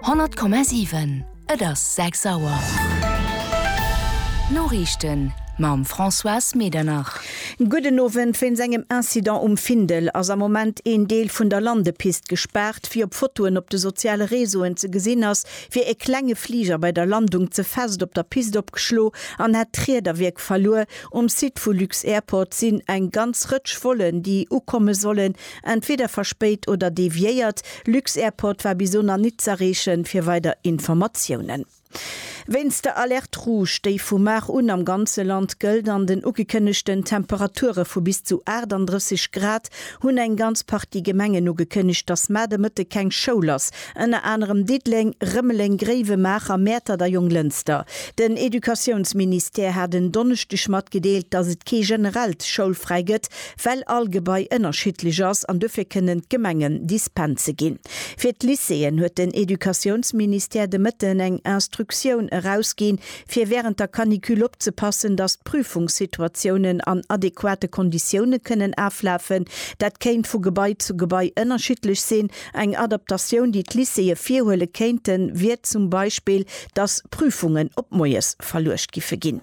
100,7 Et ass 6 Auer. D'Noriichten mam Françoise Medernach. Gudden Owend, Wéinst engem Incident um Findel ass am Moment een Deel vun der Landepist gespaart. Wéi op Fotoen op de soziale Reseauen ze gesinn ass, wier e klenge Fliger bei der Landung ze fest op der Pist opgeschlo an hätt d'Riederwierk verluer. Um Site vu Lux-Airport sinn eng ganz Rëtsch Vollen, déi ukomme sollen, Entweder verspéit oder deviéiert. Lux-Airport war bis elo nach nit z'erreechen, fir weider Informatiounen. Wéinst der Alerte Rouge, déi vu mar un am ganze Land gëllt, an den ugekënnegten Temperature vu bis zu 38 Grad, hunn eng ganz Partie Gemengen ugekënnegt, dass mar de Mëtteg keng Schoul ass. Ënner anerem Diddeleng, Rëmeleng, Gréiwemaacher, Mäertert a Jonglënster. Den Educatiounsministère hat en Donneschdeg matgedeelt, dass et kee generellt Schoulfräi gëtt, well all Gebai ënnerschiddlech ass an dofir kënnen d'Gemengen Dispense ginn. Fir d'Lycéeën huet den Educatiounsministère de Mëtten eng Instructioun erausginn, fir wärend der Canicule opzepassen, datt d'Prüfungssituatiounen an adequate Konditioune kënnen aflafen. Dat kéint vu Gebai zu Gebai ënnerschiddlech sinn. Eng Adaptatioun, déi d'Lycéeë virhuele kéinten, wier zum Beispill, datt Prüfungen op moies verluecht giffe ginn.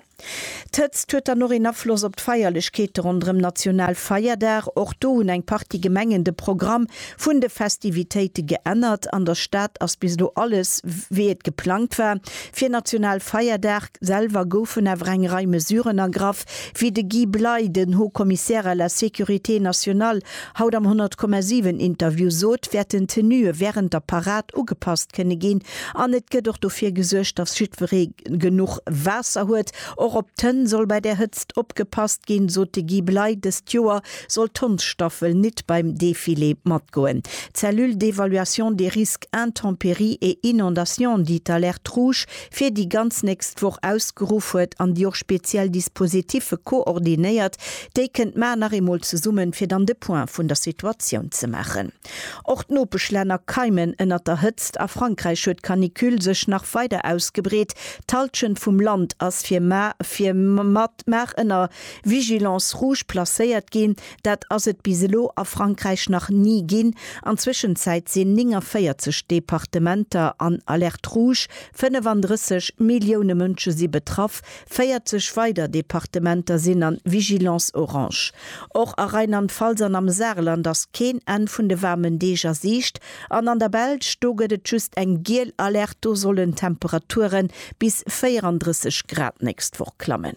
D'Hëtzt huet dann och een Afloss op d'Feierlechkeete ronderëm National Feierdag. Och do hunn eng Partie Gemengen de Programm vun de Festivitéite geännert. An der Stad ass bis elo alles wéi et geplangt war fir National Feierdag. Selwer goufen awer eng Rei Mesuren ergraff, wéi de Guy Bley, den Haut Commissaire à la sécurité nationale, haut am 100,7 Interview sot, wäerten d'Tenuë wärend der Parad ugepasst kënne ginn. An et gëtt och dofir gesuergt, datt jiddweree. genuch Waasser huet. Och op d'Hënn soll bei der Hëtzt opgepasst ginn, sot de Guy Bley. Dëst Joer soll d'Hondsstaffel nit beim Defilé matgoen. D'Cellule d'évaluation des risques intempéries et inondations, déi d'Alerte Rouge fir déi ganz nächst Woch ausgeruff huet an déi och speziell Dispositiffe koordinéiert, déi kënnt mar nach eemol zesummen, fir dann de Point vun der Situatioun ze maachen. Och d'Nopeschlänner keimen ënnert der Hëtzt. A Frankräich huet d'Canicule sech nach weider ausgebreet. D'Hallschent vum Land ass fir Mar ënner Vigilance rouge placéiert ginn. Dat ass et bis elo a Frankräich nach ni ginn. An Zwëschenzäit sinn 49 Departementer an Alerte rouge, 35 Millioune Mënsche si betraff, 40 weider Departementer sinn an Vigilance orange. Och a Rheinland-Pfalz an am Saarland ass keen Enn vun de waarmen Deeg a Siicht. An an der Belsch, do gëtt et just eng giel Alerte, do sollen d'Temperature bis 34 Grad nächst Woch klammen.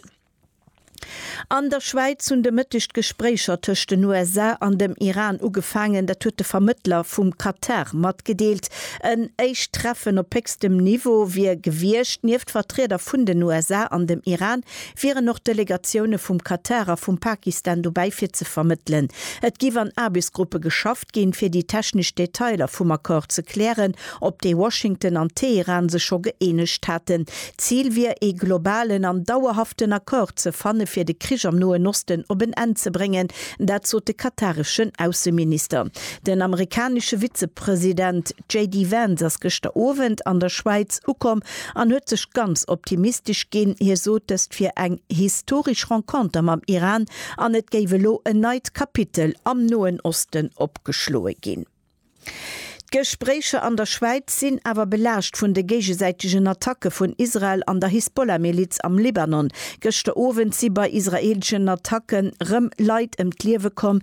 An der Schwäiz hunn de Mëtteg d'Gespréicher tëscht den USA an dem Iran ugefaangen. Dat huet de Vermëttler vum Katar matgedeelt. En éischt Treffen op héchstem Niveau wier gewiescht. Nieft Vertrieder vun den USA an dem Iran wieren och Delegatioune vum Katar a vum Pakistan dobäi fir ze vermëttelen. Et géif an Aarbechtsgruppe geschafft ginn, fir déi technesch Detailer vum Accord ze klären, op dee Washington an Teheran sech scho gëeenegt haten. D'Zil wier, ee globalen an dauerhaften Accord ze fanne fir de Krich am Noen Osten op en Enn ze bréngen, dat sot de katareschen Ausseminister. Den amerikanesche Vizepresident JD Vance ass gëschter Owend an der Schwäiz ukomm an huet sech ganz optimistesch ginn. Hie sot dëst fir eng historesch Renconter mam Iran an et géif elo en neit Kapitel am Noen Osten opgeschloe ginn. D'Gespréicher an der Schwäiz sinn awer belaascht vun de géigesäitegen Attacke vun Israel an der Hisbollah-Miliz am Libanon. Gëschter Owend si bei israeeleschen Attacke rëm Leit ëm d'Liewe komm,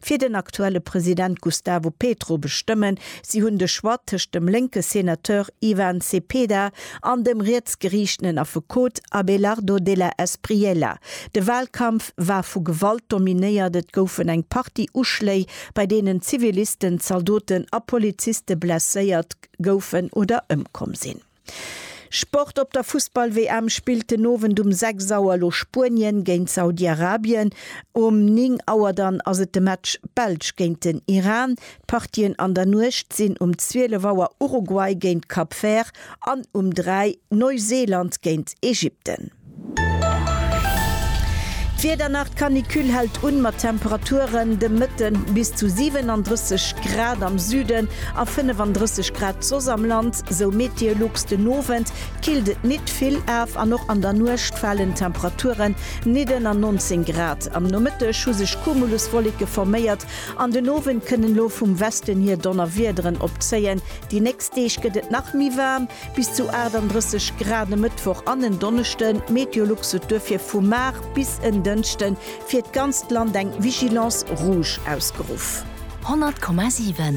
fir den aktuelle President Gustavo Petro bestëmmen. Si hunn de Choix tëscht dem lénke Senateur Ivan Cepeda an dem rietsgeriichtenen Affekot Abelardo de la Espriella. De Walkampf war vu Gewalt dominéiert, et goufen eng Partie Uschléi, bei deenen Zivilisten, Zaldoten a Poliziste blesséiert goufen oder ëmkomm sinn. Sport Op der Fussball-WM spillt den Owend um 6 Auer elo Spuenien géint Saudi-Arabien. Um 9 Auer dann ass et de Match Belsch géint den Iran. D'Partien an der Nuecht sinn um 12 Auer Uruguay géint Cap Vert an um 3 Neuseeland géint Ägypten. D'Wieder nach, D'Canicule hält un mat Temperaturen de Mëtte bis zu 37 Grad am Süden a 35 Grad soss am Land, sou Meteolux. Den Owend killt et nit vill af an och an der Nuecht falen d'Temperaturen nit ënner 19 Grad. Am Nomëtteg hu sech Cumuluswolleke forméiert an den Owend kënnen elo vum Westen hier Donnerwiederen opzéien. Déi nächst Deeg gëtt et nach méi waarm. Bis zu 38 Grad e Mëttwoch an en Donneschden. Meteolux sot duerfir vu mar bis en Dënschde fir d'ganzt Land eng Vigilance rouge ausgeruff. 100,7.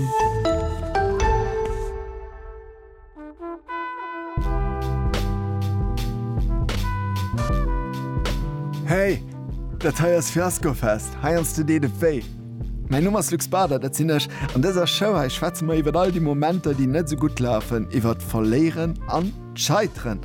Hey, dat hei ass Fiaskofest, heiansdo deet et wéi. Mäin Numm ass Luc Spada, dat sinn ech. An dëser Show hei schwätze mer iwwert all déi Momenter, déi net esou gutt lafen, iwwert d'Verléieren an d'Scheiteren.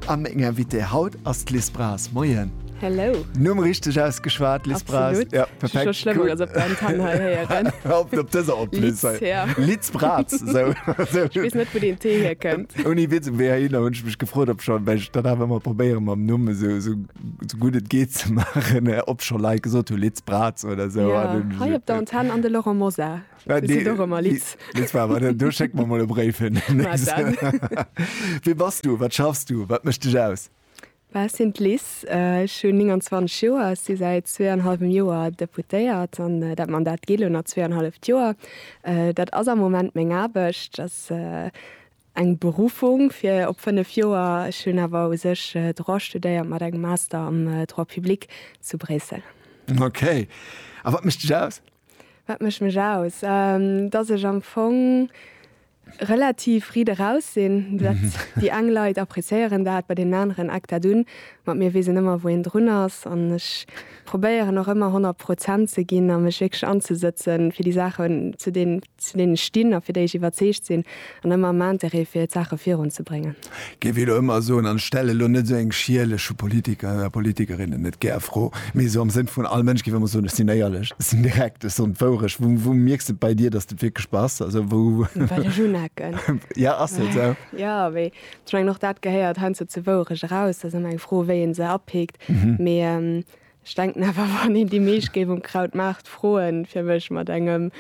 A meng Invitée haut ass d'Liz Braz. Moien. Hello. Numm richteg ausgeschwat, Liz Braz? Absolut. Ja, perfekt. Scho schlëmm, cool. Op der Antenn hei héieren. Op dëser en plus. Liz, ja. Liz Braz. So. Ech weess net, wou deen T hierkënnt. Ouni Witz, um WHI hunn ech mech gefrot, ob schonn, well ech dann awer ëmmer probéieren, mam Numm esou, esou sou gutt et geet ze maachen, obscho Leit gesot hunn, Liz Braz oder sou. Ja, hei op der Antenn an de Laurent Mosar. Äh, du seet och ëmmer Liz. Liz Faber, du, du schéck mer mol e Bréif hin. Wie bass du? Wat schaffs du? Wat mécht dech aus? Ech sinn d'Liz, ech hunn 29 Joer, ech si säit zwee an hallwem Joer Deputéiert an dat Mandat geet elo nach zwee an halleft Joer. Dat ass am Moment meng Aarbecht, ass eng Beruffung fir op 5 Joer. Ech hunn awer u sech Droit studéiert mat engem Master am Droit public zu Bréissel. Ok. A wat mécht dech aus? Wat mécht mech aus? Dass ech am Fong relativ riit eraus sinn. Dat, déi eng Leit appréciéieren dat, bei deenen aneren eckt dat un. Ma mir weesen ëmmer, wou een drun ass. An ech probéieren och ëmmer 100 Prozent ze ginn a mech wierklech anzesëtzen, fir déi Saachen, zu deenen zu deene stinn a fir déi ech iwwerzeegt sinn an ëmmer am Interêt fir d'Saache virun ze bréngen. Géif elo ëmmer soen an ech stelle elo net esou eng schierleche Politiker a Politikerinnen net gär Fro, mee esou am Sënn vun all Mënsch géif ëmmer soen, ech sinn éierlech, ech sinn direkt, ech soen d'Wourecht. Wou, wou mierks de et bei dir, datt et wierklech bass? Also wou. Well ech unecken. Jo, ass jo esou. Jo, mee ech mengen och dat gehéiert heiansdo zur Wourecht eraus. Et ass ëmmer eng Fro, wéi ee se apikt. Mee Ech denken awer wann een déi meescht géif um Krautmaart froen fir mech mat engem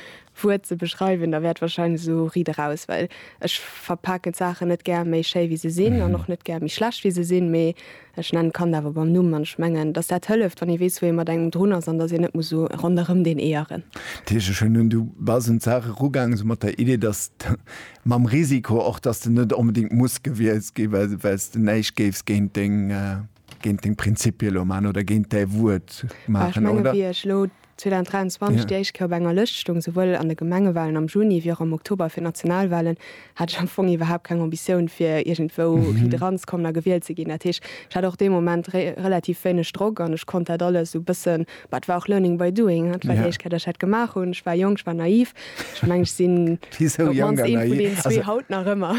Wuert ze beschreiwen, da wäert wahrscheinlech esou Ried eraus, well ech verpaken d'Saachen net gär méi schéi wéi se sinn an och net gär méi schlecht wéi se sinn, mee ech nennen d'Kand awer beim Numm an ech mengen dass dat hëlleft wann ee weess wou ee mat engem drun ass an dass een net muss esou ronderëm deen Eeëren. Dat heescht ech hunn un, du bass un d'Saach erugaangen esou mat der Idee dass de, mam Risiko och dass de net onbedéngt muss gewielt ginn, well s de näischt géifs géint deng. géint deng Prinzipie lo maachen oder géint däi Wuert maachen, oder? Ech menge wéi ech elo 2023 déi éischt Kéier op enger Lëscht stoung, souwuel an de Gemengewalen am Juni wéi och am Oktober fir d'Nationalwalen, hat ech am Fong iwwerhaapt keng Ambitioun fir iergendwou ridderanzekommen a gewielt ze ginn. Dat heescht, ech hat och dee Moment relativ wéineg Drock an ech konnt dat alles esou e bësse Bah, et war och learning by doing, dat war déi éischt Kéier, datt ech dat gemaach hunn. Ech war jonk, ech war naiv. Ech mengen, ech sinn op d'mannst ee vun deenen zwee haut nach ëmmer.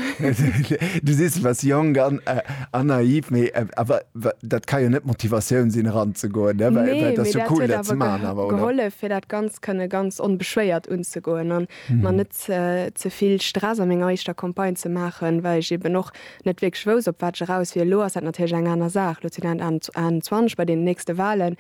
Du sees, du waars jonk an naiv, mee awer dat ka jo net d'Motivatioun sinn, eranzegoen, ne? Well et ass jo cool, dat ze maachen awer, oder? Nee, mee dat huet awer gehollef, fir dat Ganzt kënne ganz onbeschwéiert unzegoen a mer net ze vill Stress a menger éischter Campagne ze maachen, well ech eeben och net wierklech wousst, op wat ech eraus wier. Elo ass dat natierlech eng aner Saach. Elo sinn dat 21 bei deenen nächste Wahlen.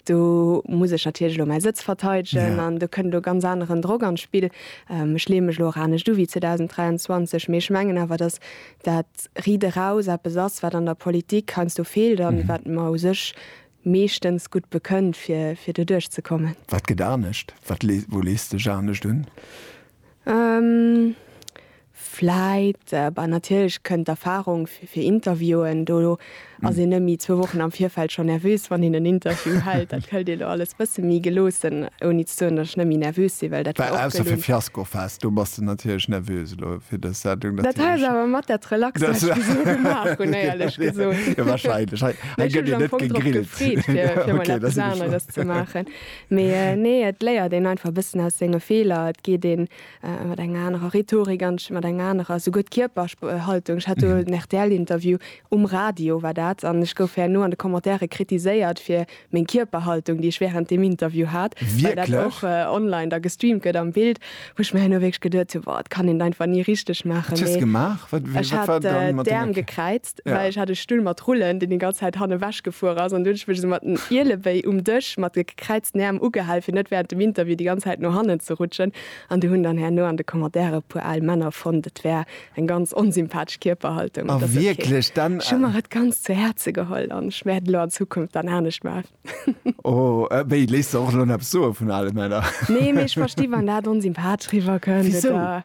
Do muss ech natierlech elo mäi Sëtz verteidegen an do kënn elo ganz aneren Drock an d'Spill. Ech leeë mech elo och anescht u wéi 2023, mee ech mengen awer, datt dat Riit eraus eppes ass, wat an der Politik heiansdo feelt a wat mer u sech meeschtens gutt bekënnt, fir doduerch ze kommen. Wat gëtt anescht? Wou lees de Ech anescht un? Vläit, bah natierlech kënnt d'Erfarung fir Interviewen. Do ass een nëmme zwou Wochen am Virfeld schonn nervös, wann een en Interview hält. Dat hëlt een elo alles e bësse méi geloossen, ouni ze soen, datt ech nëmme nervös sinn, well dat war och gelunn. Ausser fir Fiasko Fest, do bass de natierlech nervös elo fir dës Sendung. Dat hat ech awer mat der d'Relax Sendung gemaach hunn, éierlech gesot. Jo, wahrscheinlech. Hei gëtt een net gegrillt. Ech hu mech am Fong drop gefreet, fir emol eppes aneres ze maachen. Mee nee, et léiert een einfach e bëssen aus senge Feeler. Et geet ee mat enger anerer Rhetorik an d'Stëmm, mat enger anerer esouguer d'Kierperhaltung. Ech hat do en RTL-Interview, um Radio war dat, an ech gouf herno an de Commentaire kritiséiert fir meng Kierperhaltung, déi ech wärend deem Interview hat, well dat och online da gestreamt gëtt am Bild, wou ech mir herno wierklech geduet hunn, Wow, et kann een et einfach ni richteg maachen. Wat hues gemaach? Wat war dann mat denger Kierperhaltung? Ech hat d'Äerm gekräizt. well ech hat e Stull mat Rullen, deen déi ganz Zäit han ewech gefuer ass, an du huet ech mech esou mat den Ielewéi um Dësch mat de gekräizten Äerm ugehal, fir net während dem Interview déi ganz Zäit no hannen ze rutschen. An du hunn dann herno an de Commentaire e puer al Männer fonnt, et wär eng ganz onsympathesch Kierperhaltung. Et ass ok. Ech hu mer et ganz zu Häerze geholl an ech wäert et elo an Zukunft dann anescht maachen. Oh, wéi, léisst de och elo nach eppes soe vun ale Männer? Nee, mee ech versti wann dat onsympathesch riwwer kënnt, oder?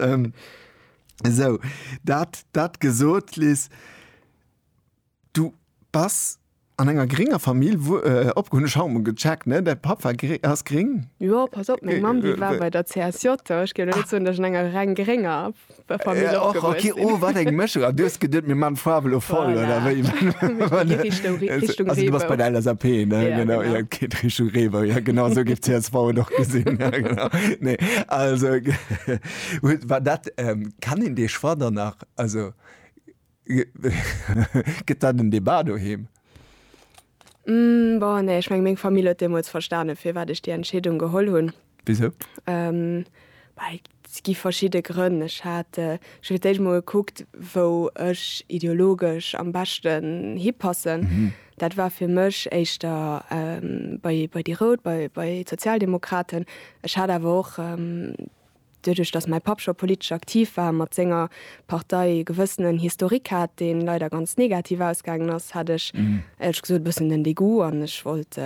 ähm, so dat dat gesot lies du pass an enger geringer Famill wo äh, opgrund Schaum gecheckt ne der Papa ass gering Jo pass op meng Mam déi war bei der CSJ ech gi net zun dech enger reng geringer Familie äh, och, okay, oh, wat eng Mëschung a dues gedet mir man Fabel voll oder wéi Richtung, Richtung also, du bei der LSAP ne ja, genau, genau. Ja. Geet Richtung Reebou, ja genau esou géif csv et och gesinn. Ja, genau. Nee, also huet war dat ähm, kann een dee Choix dann nach also gëtt dat en Debat doheem? Mm, bon, nee, ech meng, meng Famill huet deemools verstane firwat ech déi Entscheedung geholl hunn. Wisou? Et gi verschidde Grënn. Ech hat fir d'éischt emol gekuckt, wou ech ideologesch am beschten hipassen. Dat war fir mech éischter bei déi Rout, bei d'Sozialdemokraten. Ech hat awer och, doduerch datt mäi Papp scho politesch aktiv war, mat senger Partei e gewëssenen Historique hat, deen leider ganz negativ ausgaangen ass, hat ech, éierlech gesot, e bëssen den Degoût an ech wollt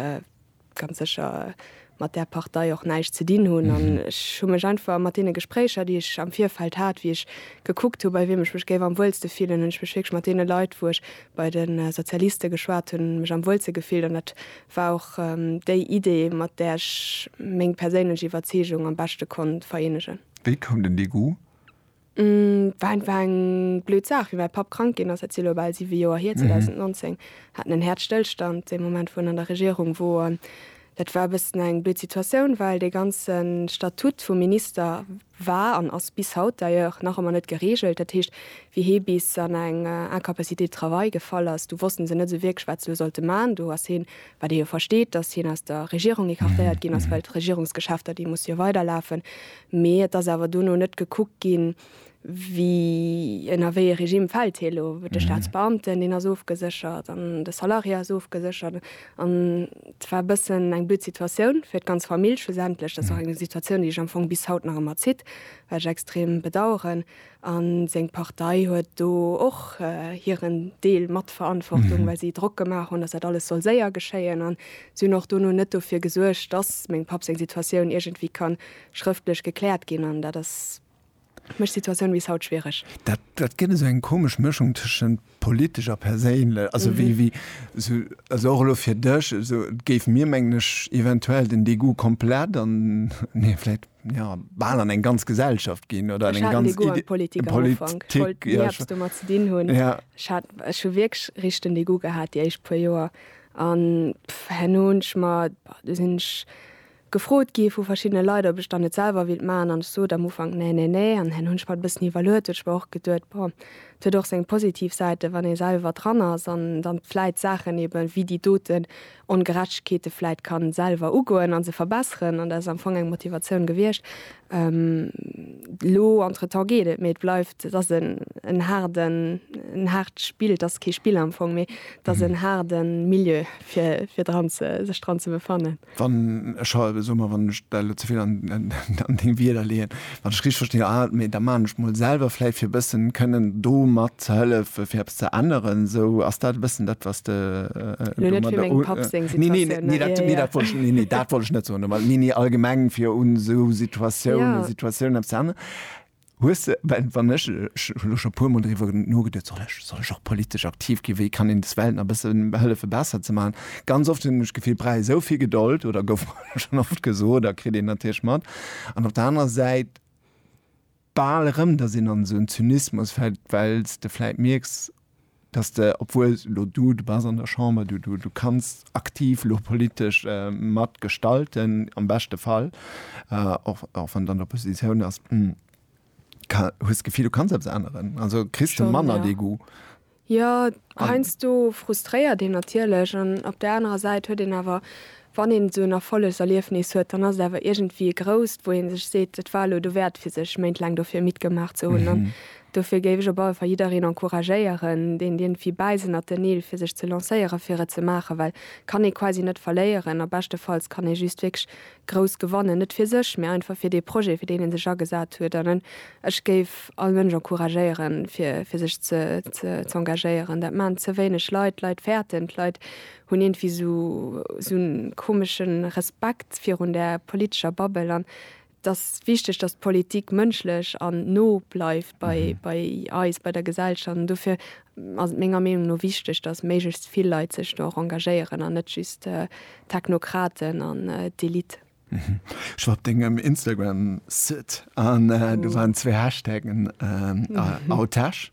ganz sécher mat där Partei och näischt ze dinn hunn. An ech hu mech einfach mat deene Gespréicher, déi ech am Virfeld hat, wéi ech gekuckt hu bei wiem ech mech géif am wuelste fillen, hunn ech mech wierklech mat deene Leit, wou ech bei de Sozialiste geschwat hunn, mech am wuelste gefillt. An dat war och déi Idee, mat där ech meng perséinlech Iwwerzeegung am beschte konnt vereenegen. Wéi koum den Dégoût Et war einfach eng blöd Saach, wéi mäi Papp krank ginn ass, dat si elo bal siwe Joer hier, 2019, haten en Häerzstëllstand dee Moment, wou en an der Regierung woren. Dat war e bëssen eng blöd Situatioun, well dee ganze Statut vum Minister war an ass bis haut d'ailleurs nach ëmmer net gereegelt. Dat heescht, wéi hie bis an eng Incapacité de travail gefall ass, du wosste se net esou wierklech, wat se elo sollte maachen. Do ass hien, wat ee jo versteet, dass hien aus der Regierung écartéiert ginn ass, well d'Regierungsgeschäfter, déi musse jo weiderlafen. Mee et ass awer dono net gekuckt ginn, wie ënner wéi e Regime fält hie lo. De Staatsbeamten, deen ass ofgeséchert an de Salarié ass ofgeséchert. An et war e bëssen eng blöd Situatioun fir d'ganz Famill schlussendlech. Dat ass och eng Situatioun, déi sech am Fong bis haut nach ëmmer zitt, wat ech extrem bedauern. A seng Partei huet do och hiren Deel mat Verantwortung, well si Drock gemaach hunn, datt dat alles soll séier geschéien. An si hunn och dono net dofir gesuergt, datt mengem Papp seng Situatioun iergendwéi kann schrëftlech gekläert ginn. An dat ass, mécht d'Situatioun bis haut schwiereg. Dat gëtt esou eng komesch Mëschung tëschent politesch a perséinlech, also wéi, wéi sou, also och elo fir dech, sou et géif mir, mengen ech, eventuell den Degoût komplett an, nee, vläicht, jo, bal an eng ganz Gesellschaft ginn oder an eng ganz Idee, Politik, Politik, ja, ech hat den Degoût am Ufank, ech wollt ni eppes domat ze dinn hunn, ja, ech hat, ech hu wierklech richteg den Degoût gehat déi éischt puer Joer an, pff, herno hunn ech mer, bah, do sinn ech, gefrot gi vu verschiddene Leit, ob ech dann net selwer willt maachen, an ech sot am Ufank nee, nee, nee, an dann hunn ech mer et e bëssen iwwerluet, well ech mer och geduet, bon, et huet och seng positiv Säiten, wann ee selwer dran ass an dann vläit d'Saachen eben wéi déi doten Ongerechtegkeete vläit kann selwer ugoen a se verbesseren, an dat ass am Fong eng Motivatioun gewiescht. Elo entretemps geet et, mee et bleift, et ass en haarden, en haart Spill, et ass kee Spill am Fong, mee et ass en haarde Milieu fir, fir dran ze, sech dran ze befannen. Wann ech, soe mer, wann ech däi elo ze vill an deng Wierder leeën, wann ech richteg verstinn, ah, mee da maachen ech mol selwer vläit fir e bëssen kënnen do mat ze hëllefen, fir eppes ze änneren esou. Ass dat e bëssen dat, wat s de domadder u. Elo net fir mengem Papp seng Situatioun. Nee, nee, nee, dat wollt ech, nee, nee, dat wollt ech net soen, mä, nee, nee, allgemeng fir un esou Situatiounen, Situatioun eppes ze änneren. Hues de, well wann ech, ech hu lo scho puer mol driwwer nogeduet, soll ech, soll ech och politesch aktiv gi, wéi kann een des Welt nach e bësse hëllefe besser ze maachen. Ganz oft hunn ech d'Gefill, brauch ee sou vill Gedold, oder gouf mer schonn oft gesot a kritt een natierlech mat, an op der anerer Säit bal erëm, datt een an esou en Zynismus fält, well s de vläit mierks, dass de, obwuel elo du, du bass an der Chamber, du, du, du kanns aktiv elo politesch mat gestalten, am beschte Fall, och, och wann de an der Oppositioun ass, ka, hues d'Gefill, du kanns eppes änneren? Also kriss de manner dee Goût? Jo, heiansdo frustréiert een natierlech an op där anerer Säit huet een awer Wann een esou en Erfollegserliefnis huet, dann ass et awer iergendwéi e grousst, wou ee sech seet, et war elo dowäert fir sech Méint laang dofir mittgemaach ze hunn. An dofir géif ech op alle Fall jiddereen encouragéieren, deen iergendwéi bäiss ënnert den Neel, fir sech ze lancéieren, fir et ze maachen, well kann ee quasi net verléieren a beschtefalls kann ee just wierklech grouss gewannen, net fir sech, mä einfach fir dee Projet, fir deen ee sech agesat huet. An ech géif all Mënsch encouragéieren, fir sech ze engagéieren. Dat maachen ze wéineg Leit. D'Leit fäerten, d'Leit hunn iergendwéi sou en komesche Respekt virun der politescher Bubble an et ass wichteg, datt d'Politik mënschlech an no bleift bei bei eis, bei der Gesellschaft an dofir ass et menger Meenung no wichteg, datt méiglechst vill Leit sech do och engagéieren an net just d'Technokraten an d'Elite. Ech war op dengem Instagram-Site an do waren zwee Hashtaggen, Autech.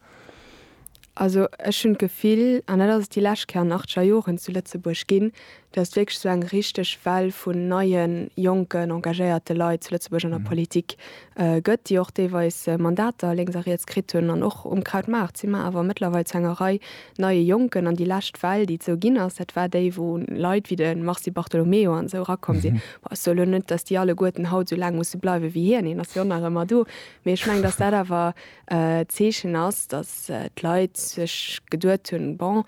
Also ech hunn d'Gefill, an dat ass et déi lescht Kéier an achter Joren zu Lëtzebuerg ginn, datt wierklech esou eng richteg Well vun neie jonken, engagéierte Leit zu Lëtzebuerg an der Politik gëtt, déi och deelweis Mandater lénks a riets kritt hunn. An och um Krautmaart si mer awer mëttlerweil zu enger Rei neie Jonken. An déi lescht Well, déi et esou ginn ass, dat war déi, wou Leit wéi de Mars Di Bartolomeo an esou erakomm sinn. Bon, ech soen elo net, datt déi alleguerten haut esou laang musse bleiwen, wéi hien, hien ass jo nach ëmmer do. Mee ech mengen, datt dat awer D'Zeechen ass, datt d'Leit sech geduet hunn, bon,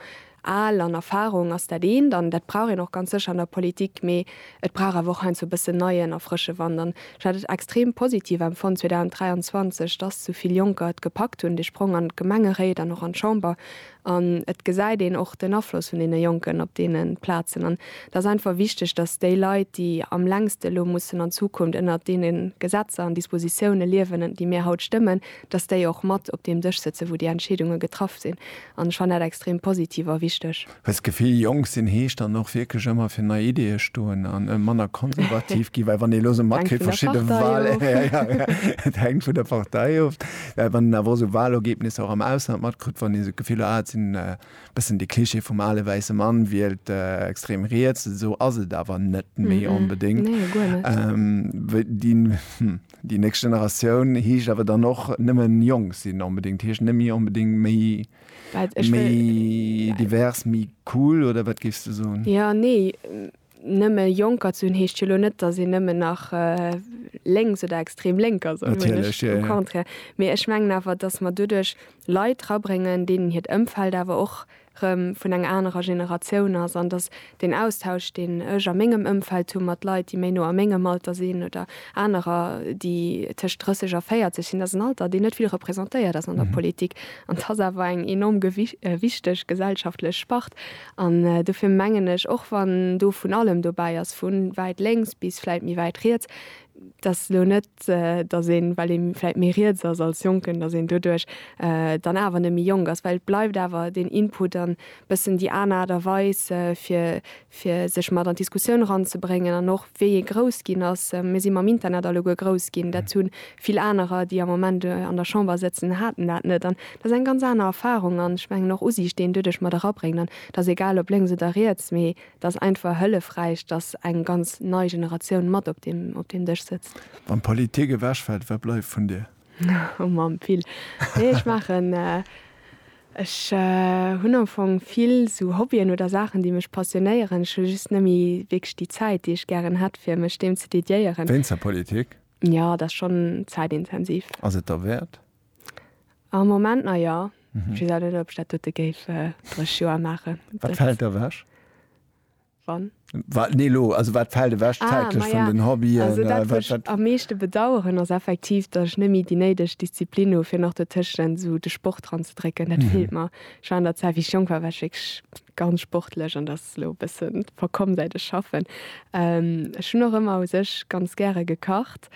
al an Erfarung ass dat eent an dat brauch een och ganz sécher an der Politik, mee et brauch awer och heiansdo e bëssen neien a frësche Wand. An ech hat et extrem positiv empfonnt 2023, datt esou vill Jonker et gepackt hunn, de Sprong an d'Gemengeréit an och an d'Chamber An et gesäit een och den Afloss vun deene Jonken op deene Plazen. An et ass einfach wichteg, dass déi Leit, déi am längste elo mussen an Zukunft ënnert deene Gesetzer an Dispositioune liewen, déi mir haut stëmmen, dass déi och mat op deem Dësch sëtzen, wou déi Entscheedunge getraff sinn. An ech fannen dat extrem positiv a wichteg. Well d'Gefill jonk sinn heescht dann och wierklech ëmmer fir nei Ideeë stoen a manner konservativ ginn. Well wann ee elo esou matkritt, verschidde Wahlen, et hänkt vun der Partei of. Well wann een awer och sou Walergebnisser och am Ausland matkritt, wann een esou d'Gefill huet, ah et sinn e bëssen dee Klischee vum ale wäisse Mann wielt extrem riets, esou ass et awer net méi onbedéngt. Déi nächst Generatioun heescht awer dann och nëmme jonk sinn onbedéngt, heescht net méi onbedéngt méi divers, méi cool oder wat géifs de soen? Jo, nee. Nëmme Jonker ze hunn heescht jo elo net, datt een nëmmen nach lénks oder extrem lénk ass, au contraire. Mee ech mengen awer, datt mer doduerch Leit rabréngen, deenen hiert Ëmfeld awer och erëm vun enger anerer Generatioun ass an datt deen Austausch, deen ech a mengem Ëmfeld hu mat Leit, déi méi no a mengem Alter sinn oder anerer, déi tëscht 30 a 40 sinn, dat ass en Alter, deen net vill representéiert ass an der Politik an dat ass awer eng enorm wichteg gesellschaftlech Spart. An dofir mengen ech, och wann do vun allem dobäi ass, vu wäit lénks bis vläit méi wäit riets, dass elo net, dass een, well ee vläit méi riets ass als Jonken, dass een doduerch dann awer net méi jonk ass, well et bleift awer deen Input an e bëssen déi aner Aart a Weis, fir sech mat an d'Diskussioun eranzebréngen an och, wéi ee grouss ginn ass, mir si mam Internet alleguer grouss ginn, dat hu vill anerer, déi am Moment an der Chamber sëtzen, haten dat net. An dat ass eng ganz aner Erfarung an ech mengen och Usiicht, déi een doduerch mat erabréngt. An et ass egal ob lénks oder riets, mee et ass einfach hëllefräich, datt eng ganz nei Generatioun mat op deem Dësch sëtzt. Wann d'Politik ewechfält, wat bleift vun dir? Oh Mamm, vill. Nee, ech maachen, ech hunn am Fong vill sou Hobbyen oder Saachen, déi mech passionéieren. Ech hu just nëmme wierklech déi Zäit, déi ech gären hätt, fir mech deem ze dediéieren. Wéinst der Politik? Jo, et ass schonn zäitintensiv. Ass et derwäert? Am Moment na jo. Ech weess awer net, ob ech dat dote géif dräi Joer maachen. Wat fält ewech? Wann? Wa, nee, elo, also wat fält ewech zäitlech vun den Hobbyen? Also dat, wat ech am meeschte bedauern, ass effektiv, datt ech net méi déi néideg Disziplin hu fir nach dotëschent esou de Sport ranzedrécken. Dat feelt mer. Ech war an der Zäit, wéi ech jonk war, war ech wierklech ganz sportlech an dat ass elo e bësse verkomm säit ech schaffen. Ech hunn och ëmmer u sech ganz gäre gekacht.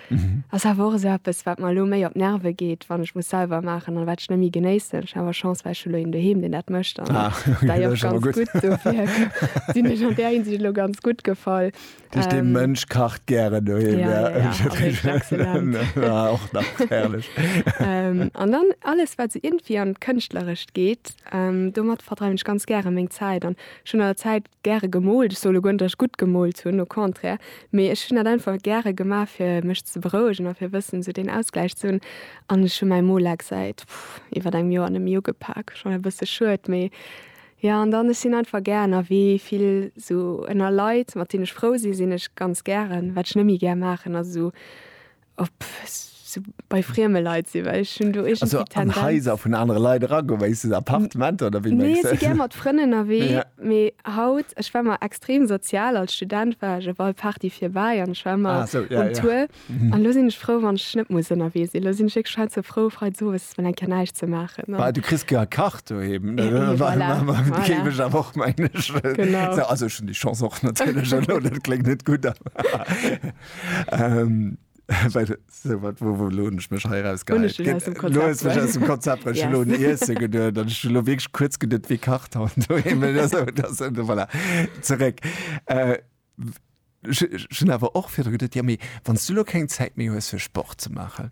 Ass awer och esou eppes, wat mer elo méi op d'Nerve geet, wann ech muss selwer maachen an wat ech net méi genéissen. Ech hu awer Chance, well ech hu elo een doheem, deen dat mécht an dei och ganz gutt. Dofir sinn ech an där Hinsicht elo ganz gutt gefall. Dat heescht, dee Mënsch kacht gären doheem. Ja, ja, ja, ass éischt excellent. Och nach, herrlech. An dann alles, wat esou iergendwéi an d'Kënschtlerescht geet, domat verdreiwen ech ganz gären meng Zäit an ech hunn an der Zäit, Gäre gemoolt. Ech soule guerndech gutt gemoolt hunn, au contraire, mee ech hunn dat einfach gäre gemaach fir mech ze berouegen a fir wëssen esou deen Ausgläich ze hunn. An ech hu mäi Molex säit iwwert engem Joer neméi ugepak, schonn e bësse schued, mee jo. An dann ech sinn einfach gär ënnerwee, vill esou ënner Leit mat deenen ech frou sinn, sinn ech ganz gären. Wat ech neméi gär maachen ass esou Op sou bei frieme Leit sinn, well ech hunn do iergendwéi d'Tendenz. Also an Haiser vun anere Leit eragoen, wéi se Appartementer oder wéi mengst du? Nee, ech si gär mat Frënn ënnerwee. Ja. Mee haut, ech war mar extrem sozial, als Student war ech op all Party virbäi an ech war ëmmer. Ah, sou, ja, ja. Um Tour. An elo sinn ech frou, wann ech net muss ënnerwee sinn. Elo sinn ech wierklech hei sou frou, Freits owes mol eng Kéier näischt ze maachen an. Bah, du kriss jo e Kach doheem. Ja, voilà, voilà. Dat géif ech awer och mengen. Genau. Also ech hunn déi Chance och natierlech. Elo, dat kléngt net gutt, awer. Ähm, well so wat wo wo lohn ich mech heiraus Hun ech den aus dem Konzept mech aus dem Konzept yes. lo Iesse geduer dann ich lo wirklich kurz gedet wie kacht haut voilà. zurück äh, schon awer och fir gedet ja mé wann du lo keng Zeit mé hues fir Sport ze machen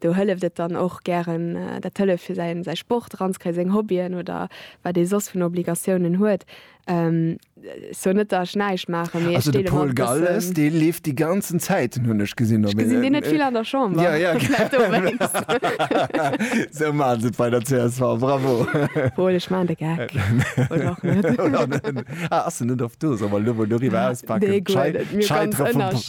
Do hëlleft et dann och gären, dat hëlleft fir säi Sport eranzekréien, seng Hobbyen oder wat ee soss vun Obligatiounen huet. Sou net, datt ech näischt maachen, mee ech deele mer e bëssen. Also de Paul Galles, dee leeft déi ganzen Zäiten, hunn ech gesinn. Ech gesinn deen net vill an der Chamber. Jo, jo. Vläicht dowéinst. Sou maache se et bei der csv. Bravo! Paul, ech maachen de Geck. Oder och net. Oder net. Ah, ass en net oft do? Solle mer elo mol doriwwer auspaken? Nee, guer net. Mir ganz ënnersch.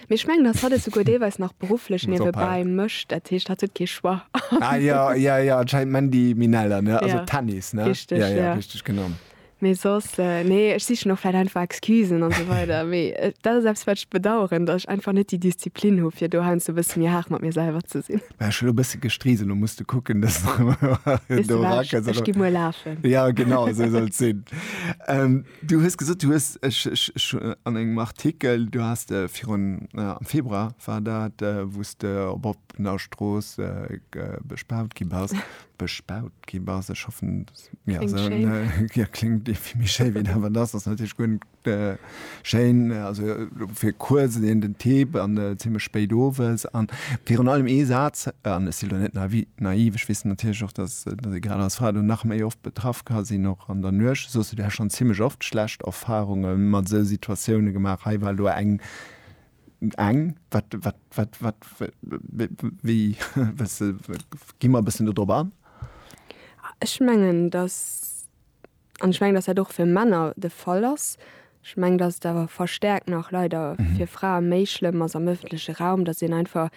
Mee ech mengen, dass hatt et souguer deelweis nach berufflech Muss ophalen. niewebäi mécht. Dat heescht, hatt huet kee Choix. Ah ja, ja, ja, anscheinend Mandy Minella, ne? Also Ja. Tennis, ne? Richteg, ja, ja, ja. richteg, genau. Mee soss, eh, nee, ech sichen och vläicht einfach Excusen an esou weider. Mee eh, dat ass eppes, wat ech bedauern, dass ech einfach net déi Disziplin hu fir do heiansdo e bësse méi haart mat mir selwer ze sinn. Mä ech hu lo e bësse gestriisel, lo muss du kucken, dass Wisst du wat, ech gi muer lafen. Ja, genau, esou soll et sinn. Ähm, Du hues gesot, du hues, ech, ech, ech hu an engem Artikel, du has de virun, am Februar war dat, wou s de op oppener Strooss bespaut gi bass, bespaut gi bass, ech hoffen, ja, Kléngt esou, schéin. ja, kléngt dee vill méi schéi wéi dat, wat ass, ass natierlech guer net schéin, also fir kuerz an den Tee an zimmlech spéit owes. A virun allem ee Saz, an ech sinn elo net naiv, ech weess natierlech och, dass, Grad als Fra do nach méi oft betraff ka sinn, och an der Nuecht. Soss hutt Dir schonn zimmlech oft schlecht Erfarunge mat esou Situatioune gemaach. Hei war elo eng, eng, wat, wat, wat, wat, wéi, gi mer e bëssen do drop an. Ech mengen, datt. An ech mengen, dass dat och fir Männer de Fall ass. Ech mengen, dass et awer verstärkt nach leider fir Frae méi schlëmm ass am öffentleche Raum, dass een einfach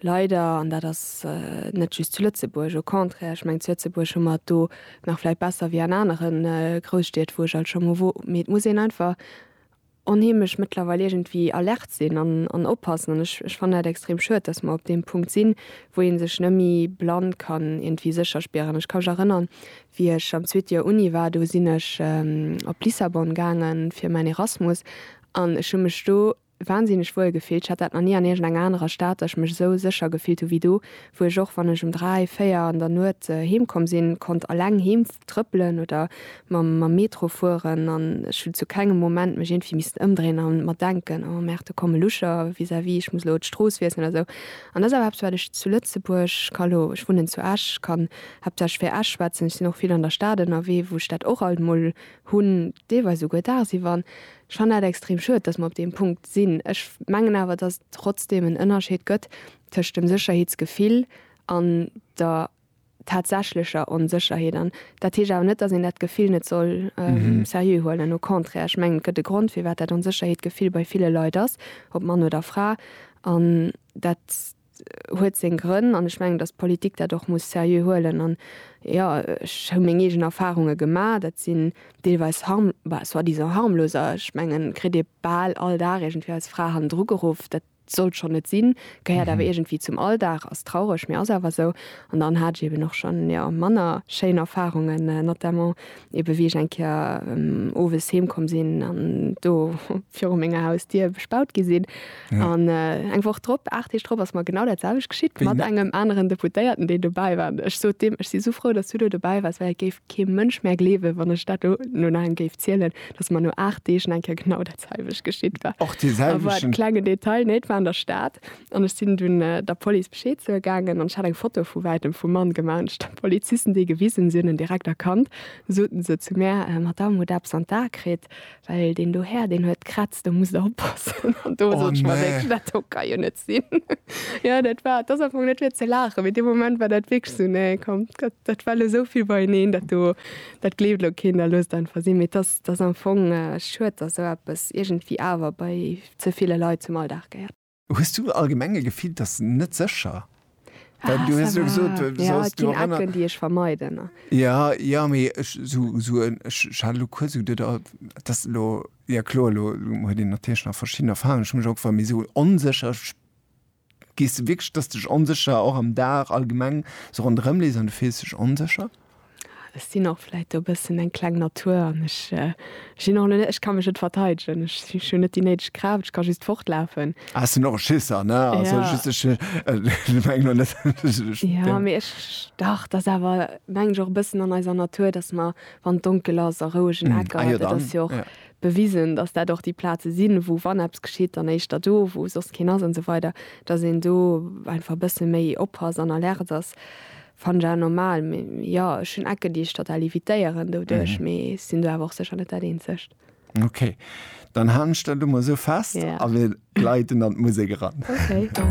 leider, an dat ass net just zu Lëtzebuerg, au contraire, ech mengen, zu Lëtzebuerg hu mer et do nach vläicht besser wéi an anere Grousstied, wou ech alt scho mol wor, mee et muss een einfach onheemlech mëttlerweil iergendwéi alert sinn an, an oppassen. An ech, ech fannen dat extrem schued, dass mer op deem Punkt sinn, wou ee sech neméi blann kann iergendwéi sécher spieren. Ech ka mech erënnern, wéi ech am zweete Joer Uni war, do sinn ech op Lissabon gaangen fir mäin Erasmus an ech hu mech do wahnsinneg wuel gefillt. Ech hat dat nach ni an iergendenger anerer Stad, dass ech mech esou sécher gefillt hu wéi do, wou ech och wann ech um 3, 4 an der Nuet heem komm sinn, konnt alleng heem trëppelen oder mam mam Metro fueren an ech hunn zu kengem Moment mech iergendwéi missten ëmdréien a mer denken, oh merde do kommen Lucher vis-à-vis, ech muss elo d'Strooss wiesselen oder esou. An dat ass awer eppes wat ech zu Lëtzebuerg, ka elo, ech wunnen zu Esch, kann haaptsächlech fir Esch schwätzen, ech sinn och vill an der Stad ënnerwee, wou ech dat och alt mol hunn, deelweis esouguer daagsiwwer. An ech fannen dat extrem schued, datt mer op deem Punkt sinn. Ech mengen awer, datt et trotzdem en Ënnerscheed gëtt, tëscht dem Sécherheetsgefill an der tatsächlecher Onsécherheet an dat heescht awer net, datt een dat Gefill net soll seriö huelen. Au contraire, ech mengen, et gëtt e Grond, firwat dat Onsécherheetgefill bei ville Leit ass, ob Mann oder Fra, an dat huet seng Grënn an ech mengen, datt d'Politik dat och muss seriö huelen an, jo, ech hu meng eegen Erfarunge gemaach, dat sinn deelweis harm, bah, soi-disant harmlos, ech mengen, kritt ee bal all Dag iergendwéi als Fra hannendru geruff, dat Sollt schonn net sinn, gehéiert awer iergendwéi zum Alldag, ass traureg, mee ass awer esou. An dann hat ech eben och schonn, jo, manner schéin Erfarungen, notamment eben, wéi ech eng Kéier owes heem komm sinn an do viru menger Hausdier bespaut gi sinn. An eng Woch drop, aacht Deeg drop ass mer genau dat selwecht geschitt mat engem aneren Deputéierten, deen dobäi war. An ech sot deem, Ech si sou frou, dass du do dobäi waars, well et géif kee Mënsch mär gleewen, wann ech dat do no engem géif zielen, dass mer no aacht Deeg nach eng Kéier genau dat. selwecht geschitt war. Och de selwechten? War e klengen Detail, nee, et war an der Stad. An ech sinn dunn der Police Bescheed soe gaangen an ech hat eng Foto vu wäitem vum Mann gemaach. An ech hunn de Polizisten déi gewisen, si hunn en direkt erkannt. Du soten se zu mär, Madamm, hutt Der eppes an d'A kritt? Well deen do Här, deen huet kratzt, do musst Der oppassen. An do sot ech mer wierklech, dat do ka jo net sinn. Jo, dat war, et ass einfach net fir ze laachen, mee dee Moment war dat wierklech esou, nee, komm, dat war elo esou vill beieneen, dat do, dat gleeft elo keen, da loosst einfach sinn. Mee et ass, 't ass am Fong schued, dass esou eppes iergendwéi awer bei ze ville Leit zum Alldag gehéiert. Hues du allgemeng e Gefill, dass net sécher? Well du hues jo gesot, du soss do erënner. Jo, et ginn Ecken, déi ech vermeiden. Jo, jo, mee ech sou, ech hat elo kuerz sou de, et ass elo, jo kloer, elo huet een natierlech nach verschidden Erfahrungen, ech hu mech och gefrot, mee sou onsécher, Gees de wierklech dass dech onsécher och am Dag allgemeng sou ronderëm lees an du fills dech onsécher? Ech sinn och vläit e bëssen eng kleng Natur an ech sinn och net, ech ka mech net verteidegen, ech hunn net déi néideg Kraaft, ech ka just fortlafen. Ah ech sinn och e Schisser ne, also just ech mengen lo net dass ech ech deng. Jo mee ech, dach et ass awer mengen ech och e bëssen an eiser Natur dass mer wann et donkel ass a rouegen Ecker, dat ass jo och bewisen, datt dat och déi Plaze sinn, wou, wann eppes geschitt, dann éischter do, wou soss keen ass an esou weider, datt een do einfach e bësse méi oppasst an alerte ass, fannen ech awer normal. Mee jo, ech hunn Ecken, déi ech total evitéieren doduerch, mee sinn do awer och sécher net dat Eenzegt. Ok, dann haalen ech dat elo mol esou fest a mir gleiten an d'Musek eran. Ok.